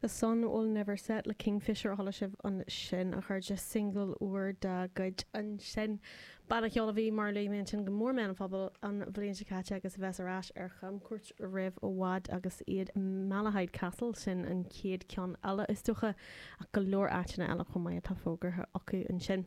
The Sun Will Never Set le Kingfishr a chuala sibh ansin, a chairde, singil úr dá gcuid ansin, banna ceoil a bhí, mar a luaigh mé, ansin go mór i mbéal an phobail an bhliain seo caite agus a bheas ar ais ar chamcuairt roimh i bhfad agus iad i Malahide Castle, sin an chéad cheann eile is dócha, ach go leor áiteanna eile chomh maith atá fógartha acu ansin.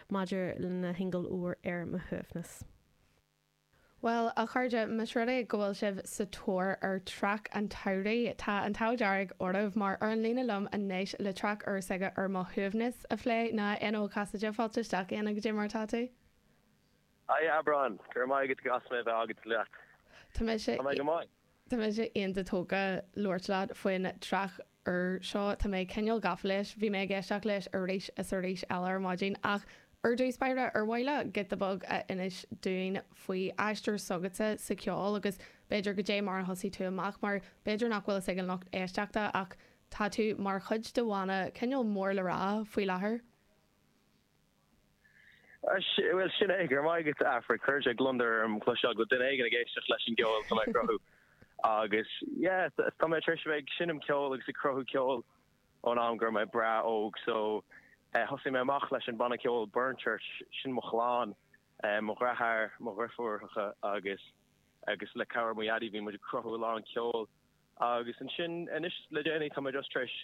Maidir lena shingil úr Ar Mo Shuaimhneas. Bhuel, a chairde, más rud é go bhfuil sibh sa tóir ar traic an tsamhraidh, tá an t-ádh dearg oraibh, mar ar an líne liom anois le traic úr s'aige Ar Mo Shuaimhneas a phlé ná Éanna Ó Casaide, fáilte isteach a Éanna, cad é mar atá tú? Hiya Aifric, go raibh maith agat, go as mé a bheith agat, leat. Tá mise. Tá mé go maith. Tá mise iontach tógtha labhairt leat faoin traic úr seo, tá mé cineál gafa leis, bhí mé ag éisteacht leis arís is arís eile ar maidin ach ar dtús báire, ar mhaith leat giota beag a inis dúinn faoi aistear s'agatsa sa cheol agus b'fhéidir cad é mar a thosaigh tú amach mar b'fhéidir nach bhfuil a fhios ag an lucht éisteachta ach tá tú mar chuid de bhanna cineál mór le rá faoi láthair. Bhuel, sin é. Go raibh maith agat, Aifric. Chuir sé gliondar orm cloisteáil go bhfuil duine éigin ag éisteacht leis an gceol atá mé ag cruthú. Agus, yeah, tá mé tar éis a bheith ag seinm ceoil agus ag cruthú ceoil ón am go raibh mé breá óg, so, eh, thosaigh mé amach leis an mbanna ceoil Burnchurch, sin mo chlann, eh, mo dheartháir, mo dheirfiúracha agus, agus le cabhair mo Dhaidí bhí muid ag cruthú a lán ceoil. Agus ansin, anois, le déanaí, tá mé just tar éis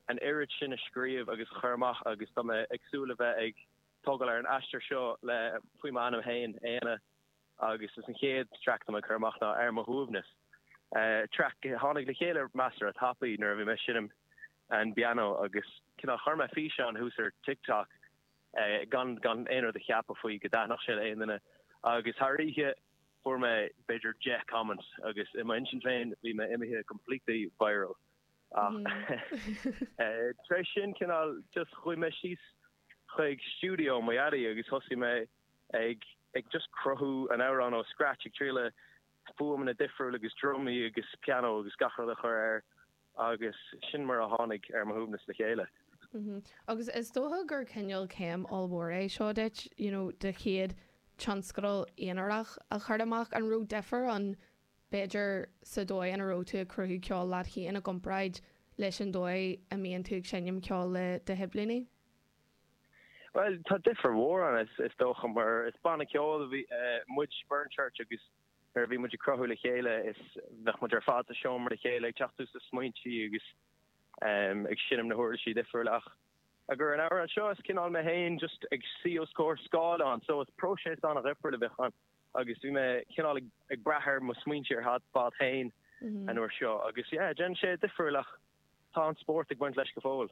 an oiread sin a scríobh agus a chur amach agus tá mé ag súil le bheith ag tógáil ar an aistear seo le, faoi m'ainm féin, Éanna, agus is an chéad traic atá mé ag cur amach ná Ar Mo Shuaimhneas, traic a tháinig le chéile measartha tapaidh nuair a bhí mé ag seinm an bpianó agus cineál chuir mé físeán thuas ar TikTok gan gan aon rud a cheapadh faoi go dtaitneodh sé le aon duine agus thar oíche fuair mé b'fhéidir deich comments agus i m'intinn féin bhí mé imithe completely viral. Ach tar éis sin, cineál, just chuaigh mé síos chuig stiúideo mo Dhaidí agus thosaigh mé ag just cruthú an amhráin ó scratch, ag triail le fuaimeanna difriúla agus drumaí agus pianó agus gach rud a chur air agus sin mar a tháinig Ar Mo Shuaimhneas le chéile. Agus is dócha gur cineál céim ollmhór é seo duit, you know, do chéad tionscadal aonarach a chur amach, an raibh difear ann b'fhéidir, sa dóigh ina raibh tú ag cruthú ceoil leat féin i gcomparáid leis an dóigh a mbíonn tú ag seinm ceoil le do shiblíní? Bhuel, tá difear mhór ann, is dócha, mar is banna ceoil muid, Burnchurch, agus nuair a bhí muid ag cruthú le chéile, is, bheadh muid ar fad sa seomra le chéile, ag teacht suas le smaointe agus ag seinm na huirlisí difriúla ach, i gcomhair an amhrán seo, is cineál mé féin just ag suí os comhair scáileán, so is próiseas an-dhifriúil a bheadh ann. agus bhí mé cineál ag brath ar mo smaointe ar fad féin an uair seo agus yeah, déanann sé difríocht ach tá an spórt ag baint leis go fóill.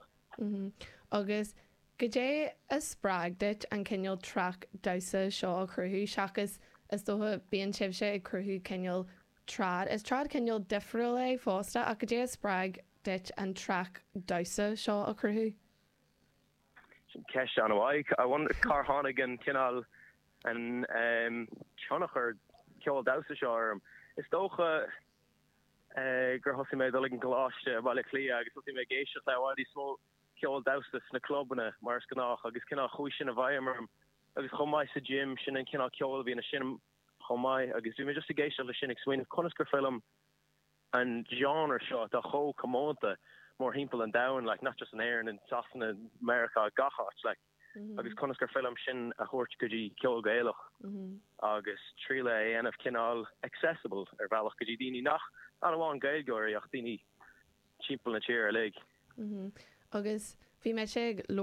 Agus goidé a spreag duit an cineál traic damhsa seo a chruthú seachas, is dócha, bíonn sibhse ag cruthú cineál trad, is trad cineál difriúil é fosta ach goidé a spreag duit an traic damhsa seo a chruthú? Sin ceist an-mhaith. I wonder cár tháinig an cineál, an tionchar ceol damhsa seo orm. Is dócha gur thosaigh mé ag dul ag an gcoláiste i mBaile Átha Cliath agus thosaigh mé ag éisteacht le i bhfad níos mó ceol damhsa sna clubanna mar is gnách agus cineál chuaigh sin i bhfeidhm orm agus chomh maith sa gym sin an cineál ceol a bhíonn ansin chomh maith agus bhí mé just ag éisteacht le sin ag smaoineamh conas gur féidir liom an genre seo atá chomh comónta mórthimpeall an domhain like not just in Éirinn, in Sasana, Meiriceá, gach áit like agus conas gur féidir liom sin a thabhairt go dtí ceol Gaelach agus triail é a dhéanamh cineál accessible ar bhealach go dtí daoine nach, not amháin Gaeilgeoirí ach daoine timpeall na tíre uilig. Agus bhí mé ag.